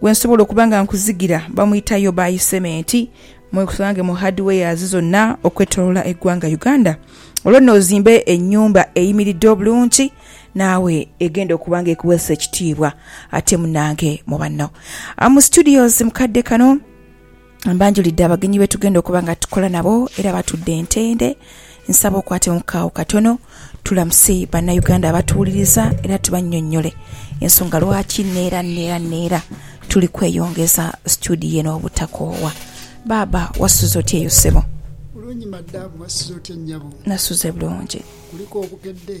gwe nsobola okuba nga nkuzigira bamwita Yobai Cement mwegusange mu hardwares zonna okwetolola eggwanga Uganda olwo no ozimbe enyumba eyimiridde obulungi naawe egenda okuba nga ekuweesa ekitiibwa ate munange mu banno am studios mukadde kano Mbanjulidde abagenyi be tugenda okuba nga tukola nabo era batudde ntende. Nsaba okwatemu ku agho katono tulamuse Bannayuganda abatuwuliriza era tubannyonnyole ensonga lwaki neera neera neera tuli kweyongeza situdiyo eno obutakoowa. Baaba, wasuze otya eyo ssebo? Bulungi madam, wasuze otya nnyabo? Nasuze bulungi. Kuliku obukedde?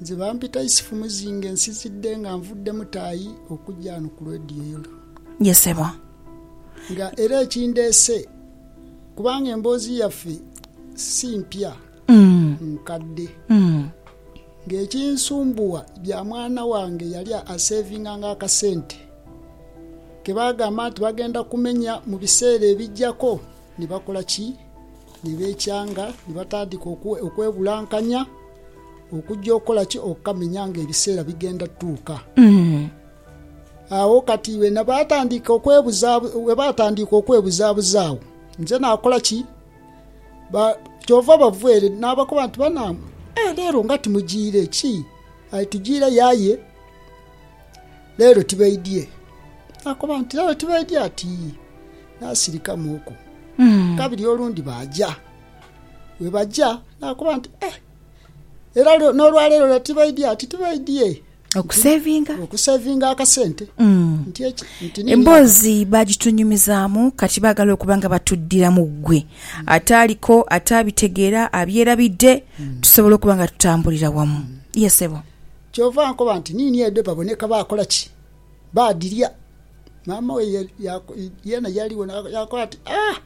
Nze bampita Isifu Muzinge nsizidde nga nvudde Mutaayi okujja ghano ku Radio Yolo. Ye sebo. Nga era ekindeese kubanga emboozi yaffe si mpya nkadde. Nga ekinsumbuwa bya mwana wange yali asevinganga akasente ke baagamba nti bagenda kumenya mu biseera ebijjako ni bakola ki? Ni beekyanga, ni batandika okwebulankanya okugya okukola ki? Okukamenya nga ebiseera bigenda tuuka. Agho kati bwena baatandika okwebuzaabuza agho, nze naakola ki? Kyova bava ere naabakoba nti, Banaange, aye leero nga timujiire. Ki? Aye tujiireyo aye leero tibaidhie. Naakoba nti, Leero tibaidhie? Ati, Yii. Naasirikamuuku kabiri olundi baaja. Bwebaja naakoba nti, Eh, era n'olwaleero lule tibaidye? Ati tibaidye. Okusevinga. Okusevinga akasente. Mm. Nti eki, nti nini Emboozi baagitunyumizaamu kati baagala okuba nga batuddira mu ggwe. Ataaliko, ataabitegeera, abyerabidde, tusobola okuba nga tutambulira wamu. Ye ssebo. Kyova nkoba nti nini edo baboneka bakola ki? Baadhirya. Maama we yeena yaaligho yaakoba ati, Ah!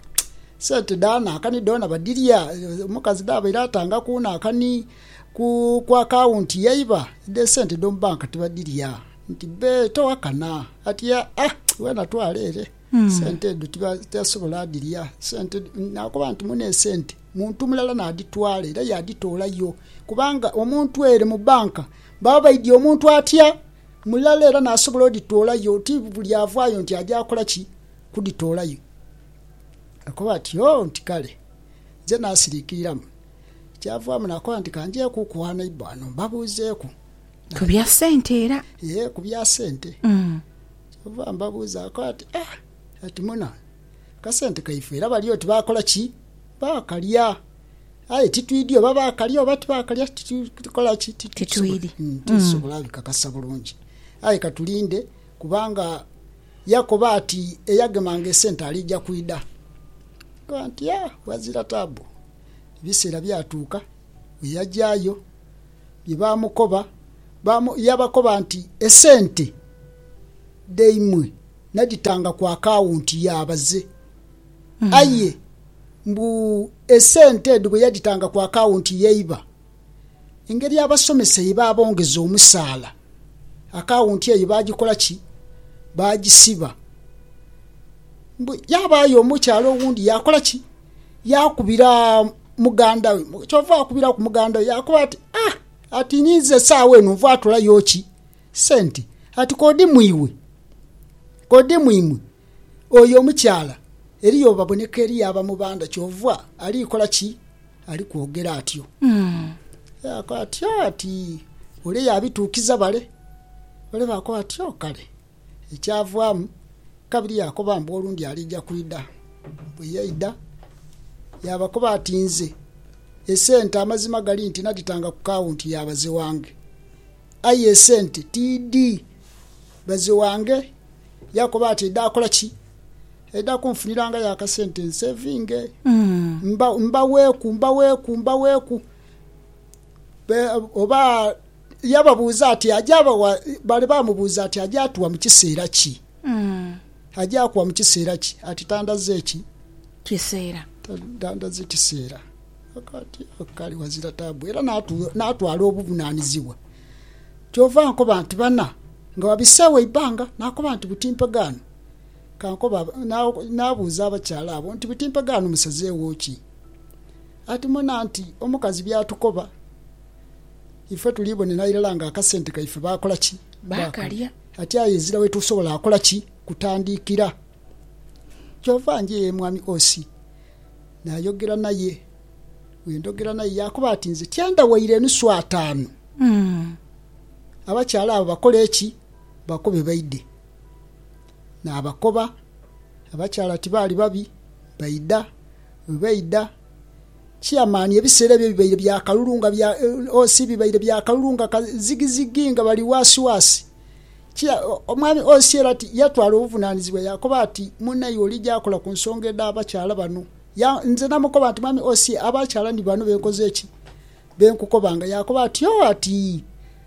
Sente dha naakani dhoona badhirya. Omukazi dhaabaire atanga ku naakani ku akawunti yaiba, dhe sente edh'omu banka tibadhirya. Nti, Bbe, towakana. Ati, Ah! Weena twala ere. Sente edho tibasobola dhirya. Sente, naakoba nti, Mune esente. Muntu mulala naadhitwala era yaadhitoolayo. Kubanga omuntu ere mu banka baba baidhie omuntu atya? mulala era naasobola odhitoolayo, ti buli avaayo nti aja kola ki? Kudhitoolayo. Akoba ati, Oh, nti kale. Nze naasiriikiriramu. Kyavaamu naakoba nti, Ka njeeku ku gha neighbour ghano mbabuuzeeku. Ku bya sente era. Yee, ku bya sente. Kyava mbabuuza akoba ati, Ah, ati muna, akasente kaife era bali oti baakola ki? Baakalya. Aye titwidhi oba baakalya oba tibaakalya, titukola ki? Titwidhi. Titusobola bikakasa bulungi. Aye ka tulinde, kubanga yakoba ati, Eyagemanga esente aliija kwidha. Nkagamba nti, Ya, ghazira taabu. Ebiseera byatuuka bwe yajaayo, bye baamukoba, yabakoba nti, Esente dhaimwe nadhitanga ku akawunti ya baze. Aye mbu esente edho bwe yadhitanga ku akawunti yaiba engeri abasomesa ye baabongeza omusaala, akawunti eyo baagikola ki? Baagisiba. Mbu yaabaayo omukyala owundi yaakola ki? Yaakubira muganda we. Kyova akubiraku muganda we yaakoba ati, Ah! Ati ninze esaawa eno nvaatolayo ki? Sente. Ati k'odhi mu iwe, k'odhi mu imwe. Oyo omukyala eriyo obaboneka eriyo aba mu banda kyova ali kola ki? Ali kwogera atyo. Yaakoba ati, Oh, ati ole yaabituukiza bale. Bale baakoba bati, Oh, kale. Ekyavaamu, kabiri yaakoba mbu olundi aliija kwidha. Bwe yaidha, yaabakoba ati, Nze, esente amazima gali nti nadhitanga ku kaawunti ya baze wange. Aye esente tiidhi. Baze wange yaakoba ati eidha kola ki? Eidha kunfunirangayo akasente nsevinge, mbaweeku, mbaweeku, mbaweeku. Oba yababuuza ati aja bawa, baali baamubuuza ati aja tuwa mu kiseera ki? Aja kuwa mu kiseera ki? Ati tandaze ki? Kiseera. Tandaze kiseera. Akaati ako kaali ghazira taabu era naatwala obuvunaanizibwa. Kyova ankoba nti, Bana, nga wabiseegho eibanga? Naakoba nti, Buti mpegaano. Kankoba, naabuuza abakyala abo nti, Buti mpegaano musazeegho ki? Ati mona nti omukazi by'atukoba, ife tuli bonera irala nga akasente kaife baakola ki? Baakalya. Ati aye ezira wetusobola kola ki? Kutandiikira. Kyova njia ye mwami Osi. naayogera naye. Bwe ndhogera naye yaakoba ati, Nze tyenda waire enusu ataanu. Abakyala abo bakole ki? Bakobe baidhe. Naabakoba. Abakyala tibaali babi, baidha. Bwe baidha, chairman ebiseera ebyo bibaire bya kalulu nga bya, OC bibaire bya kalulu nga kazigizigi nga bali waasiwaasi. Omwami Osieri ati, Yatwala obuvunanizibwa yaakoba ati, Munaiwe oli gy'akola ku nsonga edh'abakyala bano? Nze namukoba nti, Mwami Osieri, abakyala ni bano be nkoze ki? Be nkukobanga. Yaakoba ati, Oh, ati,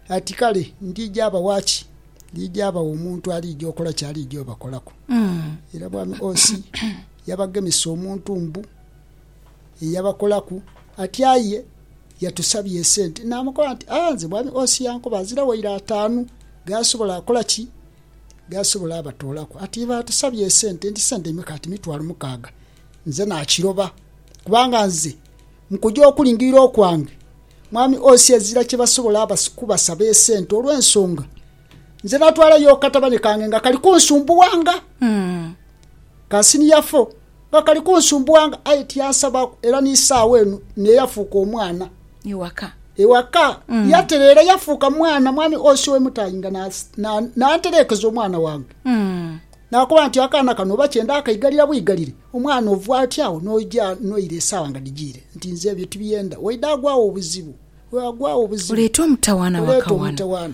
ati kale, ndiija abawa ki? Ndiija abawa omuntu aliija okola ky'aliija obakolaku. Era Mwami Osi yabagemesa omuntu mbu. eyabakolaku ati aye yatusabye esente namukoba nti aa nze mwami Os yankoba azira waire ataanu gaasobola akola ki gaasobola abatoolaku ati baatusabye esente nti sente imeka ati mitwalo mukaaga nze nakiroba kubanga nze mukuja okulingirira okwange mwami Os ezira kyebasobola kubasaba esente olwensonga nze natwalayo akatabane kange nga kali kunsumbuwanga kasiniya fo. Nga kali kunsumbuanga aye tiyansabaaku era ni saagho eno niye yafuuka omwana. Ewaka. Ewaka. Yatereera yafuuka mwana mwami Ossi owe Mutaayi nga n'antereekeza omwana wange. N'akoba nti akaana kano oba kye ndaakaigalira bwigalire, omwana ova oti agho n'oja noira esaawa nga dhijiire nti nze ebyo tibyenda. Waidha agwagho obuzibu. Waidha agwagho obuzibu. Oleete omutawaana waka wano. Oleete omutawaana.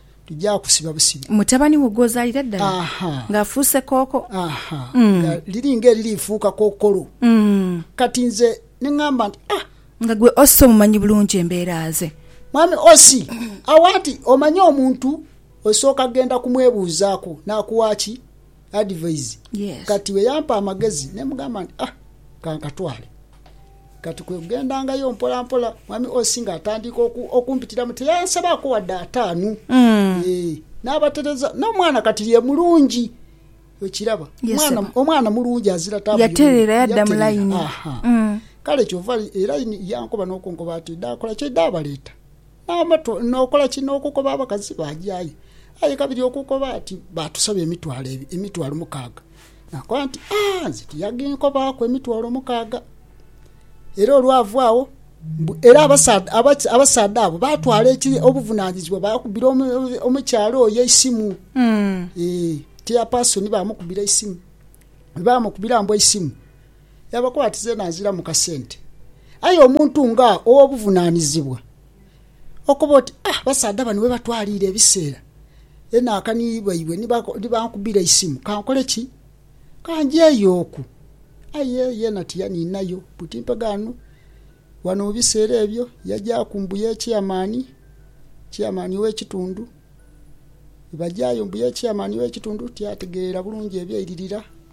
tugya kusiba busibi. Mutabani wo gw'ozaalira ddala ng'afuuse kooko. Aha, nga liri ng'eririifuuka kookolo. Kati nze ni ngamba nti, Ah! Nga gwe Ossi omumanyi bulungi embeera ze. Mwami Ossi, awa nti, Omanyi omuntu osooka genda kumwebuuzaaku n'akuwa ki? advise. Kati bwe yampa amagezi ne mugamba nti, Ah, ka nkatwale. Kati kwe kugendangayo mpolampola, Mwami Osi ng'atandiika okumpitiramu. Teyansabaako wadde ataanu. N'abatereza. N'omwana kati ye mulungi. Okiraba? Omwana mulungi azira taabu. Yatereera yadda mu layini. Kale kyova era yankoba n'okunkoba ati, Daakola kye daabaleeta. N'amato, n'okola ki? N'okukoba abakazi baaja aye. Aye kabiri okukoba ati, Baatusaba emitwalo, emitwalo mukaaga. Naakoba nti, Aa, nze tiyaginkobaaku emitwalo mukaaga. Era olwava agho, mbu era abasaadha, abaki- abasaadha abo baatwala eki, obuvunaanyizibwa, baakubira omu- omu- omukyala oyo eisimu. Ee, chairperson baamukubira eisimu. Bwe baamukubira mbu eisimu, Yabakwatiza eno aziramu kasente. Aye omuntu nga ow'obuvunanizibwa okoba oti ah abasaadha bano webatwaliire ebiseera eno aka ni baibwe ni bankubira eisimu kankole ki? Kanjeeyo oku. Aye yeena tiyaniinayo buti mpegho ghano. Ghano mu biseera ebyo yajaaku mbu ye Chairman, Chairman ow'ekitundu. Bwebajaayo mbu ye Chairman ow'ekitundu tiyategeerera bulungi ebyairirira.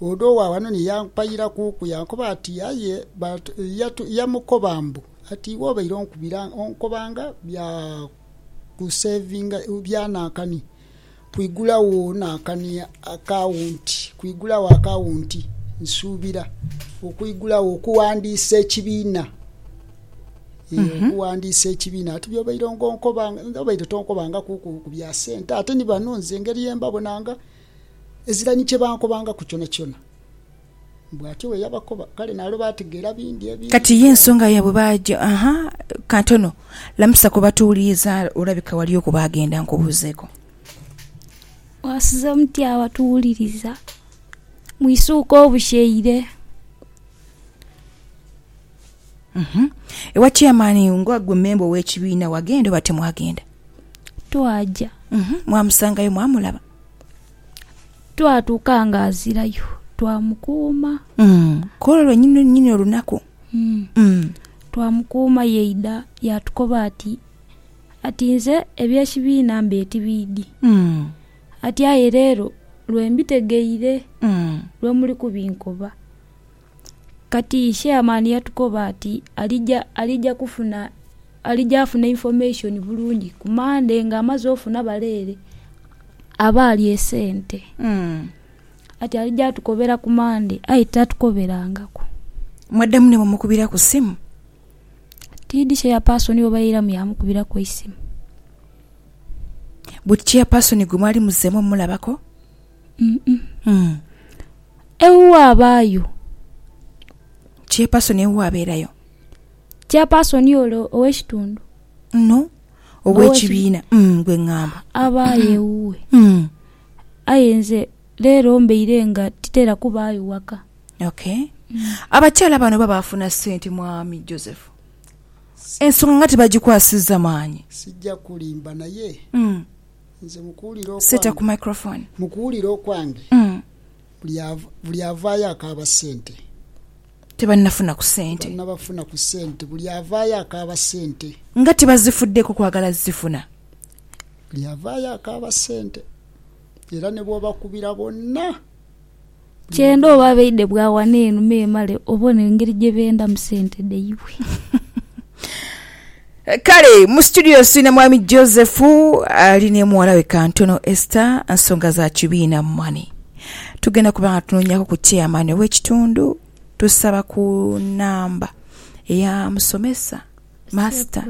Odo owa ghano ni yampayira kuuku, yankoba ati, Aye yamukoba mbu, Ati iwe obaire onkubira onkobanga bya kusevinga bya nankani kwigulagho nankani akawunti, kwigulagho akawunti, nsuubira okwigulagho, okuwandiisa ekibiina. Yee, okuwandiisa ekibiina. Ati by'obaire nga onkoba, obaire tonkobangakuku ku bya sente. Ate ni bano nze engeri ye mbabonanga. Ezira ni kye bankobangaku kyonakyona. Bw'atyo bwe yabakoba. Kale naalwo baategeera bingi ebingi Kati ye ebyagho. nsonga yaibwe baaja aha. Katono, lamusa ku batuwuliriza, olabika waliyo ku baagenda. Nkubuuzeeko. Mwasize mutya abatuwuliriza mu isuuka obusheire? Uhum. Ewa chairman, nga ggwe mmemba ow'ekibiina, wagenda oba timwagenda? Twaja. Uhum. Mwamusangayo? Mwamulaba? Twatuuka nga azirayo, twamukuuma. Mm. Kwolwo lwenyini lwenyini olunaku. Mm. Mm. Twamukuuma yaidha yaatukoba ati, Ati nze eby'ekibiina mbaire tibiidhi. Mm. Ati aye leero lwe mbitegeire, Mm. lwe muli kubinkoba. Kati chairman yatukoba ati alija alija kufuna alija afune information bulungi ku Monday nga amaze ofuna bale ere abaali esente. Mm. Ati alija atukobera ku Monday aye tatukoberangaku. Mwaddamu ne mumukubiraku ssimu? Tiidi chairperson oba yairamu yamukubiraku eisimu. But chairperson gwe mwali muzzeemu omumulabako? Ewuwe abaayo. Chairperson ewuwe abeerayo. Chairperson ole ow'ekitundu. No, ow'ekibiina. Mm, gwe ngamba. Abaayo ewuwe. Mm, Aye nze leero mbeire nga titera kubaayo waka. okay. Abakyala bano oba baafuna sente mwami Joseph? Ensonga nga tebagikwasizza maanyi. Sijja kulimba naye Mm, Nze mu kuwulira okwange, mu kuwulira okwange buli avaayo akaaba sente. Tebannafuna ku sente. Tebannabafuna ku sente. Buli avaayo akaaba sente. Nga tibazifuddeeko kwagala zifuna. Buli avaayo akaaba sente era ne bw'obakubira bonna. Kyenda oba abaidhe bwa wano eno memale obone engeri gye bendamu sente dhaibwe. Kale mu situdiyo siri na mwami Joseph ali ne muwala we Kantono Esther, nsonga za kibiina mani. Tugenda kuba nga tunoonyaku ku chairman ow'ekitundu, tusaba ku namba eya musomesa. Master.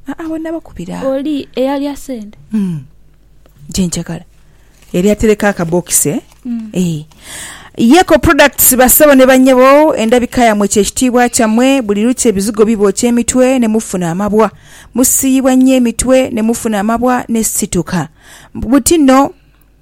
Aa we nabakubira. Oli eyalya sente. Umm gyenjagala yali atereka akabokisi eeh. Yeko Products bassebo ne bannyabo endabika yammwe kye kitiibwa kyammwe. Buli lukya ebizigo bibookya emitwe ne mufuna amabwa. Musiiyibwa nnyo emitwe ne mufuna amabwa ne situka. Buti nno.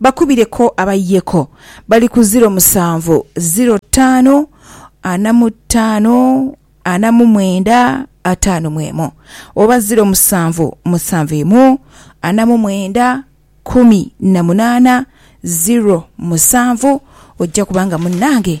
Bakubire ko abaye ko. Bali ku ziro musanvu, ziro taanu, ana mu taanu, ana mu mwenda, ataanu mu emu. Oba ziro musanvu, musanvu imu, ana mu mwenda, kumi na munaana, ziro musanvu. Ojja kuba nga munnange